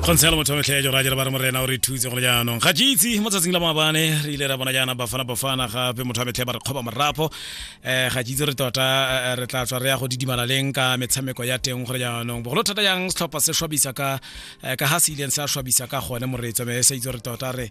kgontshelo motho wa metlha ya jora jere ba re morena o re thutse gone jaanong ga jeitse mo tsatsing la maabane re ile ra bona jaana bafana bafana gape motho wa metlha ba re kgoba morapo um ga jeitse re tota eh, re tla tswa re ya go didimala leng ka metshameko ya teng gore jaanong bogolo thata jang setlhopha se shwabisa ka eh, ka ga se ileng sa shwabisa ka gone moreetso me sa itse re tota re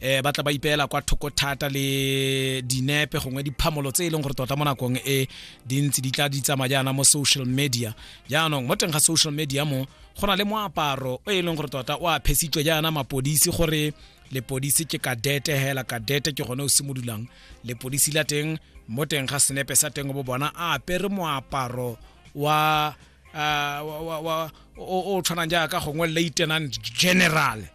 eh ba tla ba ipeela kwa thoko thata le dinepe gongwe diphamolo tse e leng gore tota mo nakong e dintsi di tla di tsamaya jaana mo social media jaanong mo teng ga social media mo go na le moaparo o e leng gore tota o a phesitswe jaana mapodisi gore lepodisi ke kadete hela kadete ke gone o simololang lepodisi la teng mo teng ga senepe sa teng bo bona a apere moaparo wa o tshwanang jaaka gongwe lieutenant general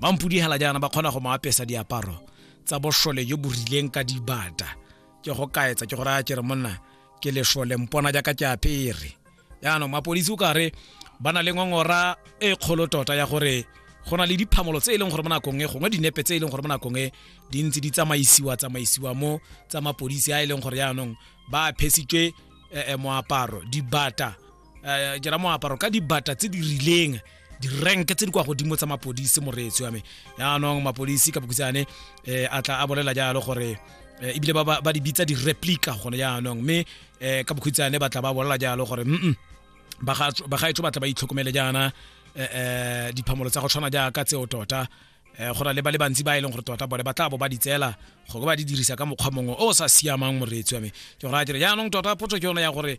ba mpudihela jaana ba kgona go mo apesa diaparo tsa bošole jo bo rileng ka dibata ke go kaetsa ke go raya ke re monna ke lešole mpona jaaka ke apere jaanong mapodisi o kare ba na le ngongora e kgolo tota ya gore go na le diphamolo tse e leng gore mo nakong e gongwe dinepe tse e leng gore mo nakong e di ntse di tsamaisiwa tsamaisiwa mo tsa mapodisi a e leng gore jaanong ba phesitswe eh, eh, moaparo dibata um ke ra moaparo ka dibata tse di rileng direnke tse di kwa godimo tsa mapodisi moreetsi wa me yaanong mapodisi ka bokutsane um eh, a tla a bolela jalo gore um ebile ba di bitsa di-replica gone jaanong mme um ka bokhutshwane ba tla ba bolela jalo gore mm bagaetso ba tla ba itlhokomele jaana um diphamolo tsa go tshwana jaaka tseo tota um go na le ba le bantsi ba e leng gore tota bone ba tla bo ba di tseela go ba di dirisa ka mokgwa mongwe o o sa siamang moreetsi wa me ke gore a dire jaanong tota potso ke yone ya gore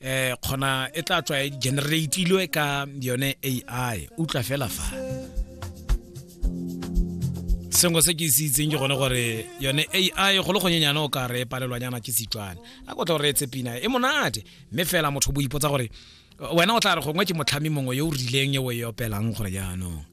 eh khona e tla tswa e generatilwe ka yone ai utlwa fela fa sengwe se ke se itseng ke gone gore yone ai go le gonyenyane o ka re palelwanyana ke setswana a kotla gore e tse pina e monate mme fela motho bo ipotsa gore wena o tla re gongwe ke motlhami mongwe yo o rileng e o e opelang gore jaanong